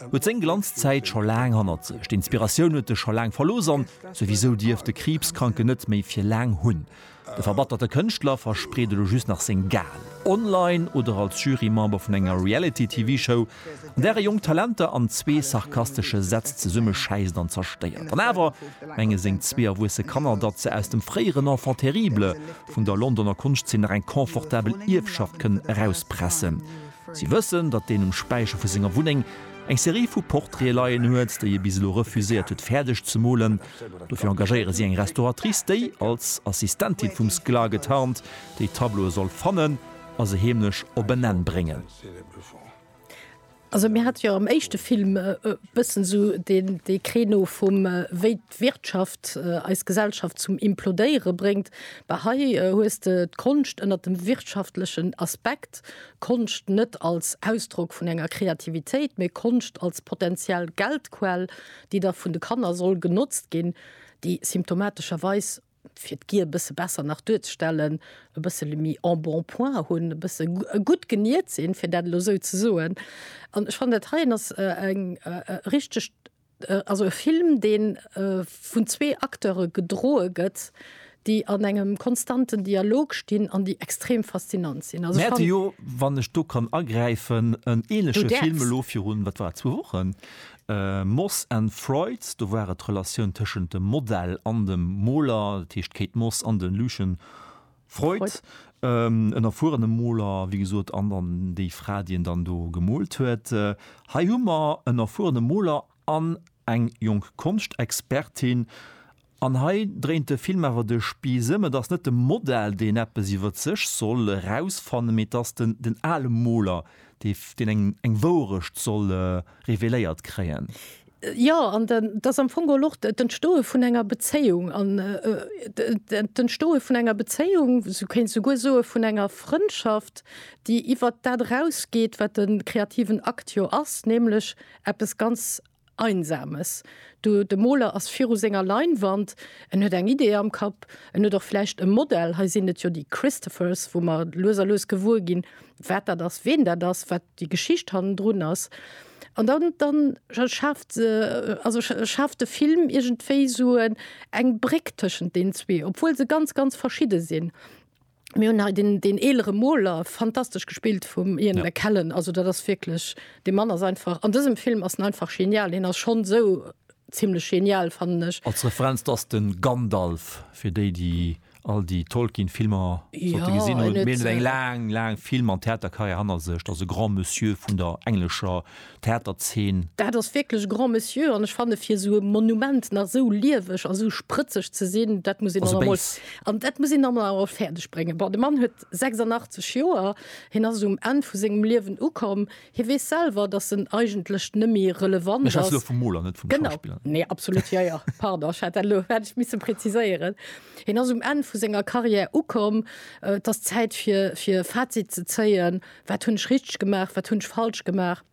Huet seng Glanzzäit scho laang hannert sech. D'Inspiratioun huet e scho laang verlooss an souwisou dierft de Kriibskranken net méi fir laang hunn. De verbatterte Kënschtler verspreet elo just nach seng Ga'en. Online oder als Jurymember vun enger Reality-TV-Show, an där e jonk Talenter an zwee sarkastesche Sätz zesummeschäisst an zerstéiert. An awer menge seng zwee erwuesse Kanner, datt se aus dem fréieren Enfant terrible vun der Londoner Konschtzeen nach eng confortabel Ierfschaft kënnen erauspressen. Si wëssen, datt deen um Späicher vu senger Wunneng eng Serie vu Portraite leien huet, déi e bis elo refuséiert huet fäerdeg ze molen. Dofir engagéiere si eng Restauratrice, déi, als Assistentin vum Sklar getarnt, déi Tableaue soll fannen a se heemlech op en Enn bréngen. d'Wirtschaft eis Gesellschaft zum Implodéiere bréngt, bah hei hues de d'Konscht ënnert dem wirtschaftlechen Aspekt, Konscht net als Ausdrock vun enger Kreativitéit, mee Konscht als potentiell Geldquell, déi da vun de Kanner soll genotzt ginn, déi symptomatescherweis, fir d'Gier e bësse besser nach duerzestellen, e bëssele méi en bon point hunn, e bësse gutt geniert sinn, fir dat elo esou ze soen. An ech fannen, dat heien ass e richtegt Also e Film, dee vun zwee Acteure gedroe gëtt, déi an engem konstanten Dialog stinn an déi extrem faszinant sinn. Mir hate jo, wann ech do kann agräifen, en änleche Film elo virun, wat war et, zwou Wochen, Moss and Frights. Do war et d'Relatioun tëschent dem Model an dem Moler, dat heescht d'Kate Moss an de Lucien Freud, en erfuerene Moler, wéi gesot, an dann déi Fra, déi en dann do gemoolt huet. Hei hu mer en erfuerene Moler an eng jonk Konschtexpertin. An hei dréint de Film awer de Spieß ëm, Et ass net de Modell, deen eppes iwwer sech soll erausfannen, mee et ass den ale Moler, deen eng Wourecht soll reveléiert kréien. Jo, an et ass am Fong geholl och d'Entstoe vun enger Bezéiung an d'Entstoe vun enger Bezéiung, sou kéint ee souguer soe vun enger Frëndschaft, déi iwwert dat erausgeet, wat de kreativen Akt jo ass, nämlech eppes ganz Einsames. Du, de Moler ass viru senger Leinwand, en huet eng Idee am Kapp, en huet och vläicht e Modell, hei sinn et jo déi Christophers, wou mer lues a lues gewuer ginn, wat dat ass, ween dat ass, wat déi Geschicht hannendrun ass an dann dann schafft se also schafft de Film iergendwéi esou eng Bréck tëschent den zwee, obwuel se ganz ganz verschidde sinn. Mir hunn hei den, den eelere Moler, fantastesch gespillt vum Ian Ja. McKellen, also dat ass wierklech, de Mann ass einfach, an dësem Film ass en einfach genial, hien ass schonn esou zimmlech genial, fannen ech. Als Referenz, dat ass de Gandalf, fir déi, déi all déi Tolkien Filmer sollte ja, gesinn hunn. Hien huet eng laang, laang Film an Theaterkarriär hannert sech. Dat ass e Grand Monsieur vun der englescher Theaterzeen. Dat ass wierklech Grand Monsieur an ech fanne fir esou e Monument nach esou lieweg a sou sprëtzeg ze sinn, dat muss een dann emol, an dat muss een dann emol fäerdeg bréngen. Bon, de Mann huet 86 Joer, hien ass um Enn vu sengem Liewen ukomm. Hie weess selwer, datt en eigentlech nëmmi relevant ass. Ech schwätze elo vum Moler, net vum Schauspiller. Genau, nee, absolut, jo, jo, pardon, ech hat dat elo, hätt ech misse preziséieren. Hien ass um Enn vu senger Carrière ukomm. Et ass Zäit fir, fir Fazit ze zéien. Wat hunn ech richteg gemaach, wat hunn ech falsch gemaach?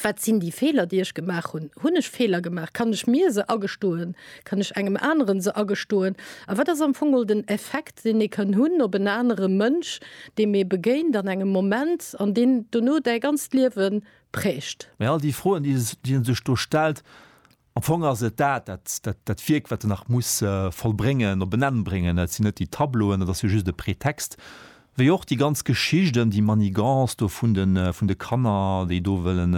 Wat sinn déi Feeler, déi ech gemaach hunn? Hunn ech Feeler gemaach? Kann ech mir se agestoen? Kann ech engem aneren se agestoen? A wat ass am Fong mol den Effekt, deen ee kann hunn op en anere Mënsch, deem ee begéint an engem Moment an deen dono däi ganzt Liewe prägt. Mä all déi Froen, déi e sech do stellt, am Fong ass et dat, dat Wierk, wat en nach muss vollbréngen, op en Enn bréngen. Et sinn net déi Tableauen, dat ass jo just e Pretext. Wéi och déi ganz Geschicht ëm déi Manigance do vun de Kanner, déi do wëllen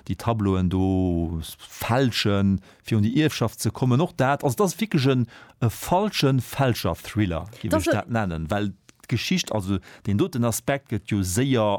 déi Tableauen do fälschen, Fir un déi Ierfschaft ze kommen, och dat, also et ass wierklech en e falschen Fälscher-Thriller, géif ech dat nennen, well d'Geschicht, also deen doten Aspekt gëtt jo séier.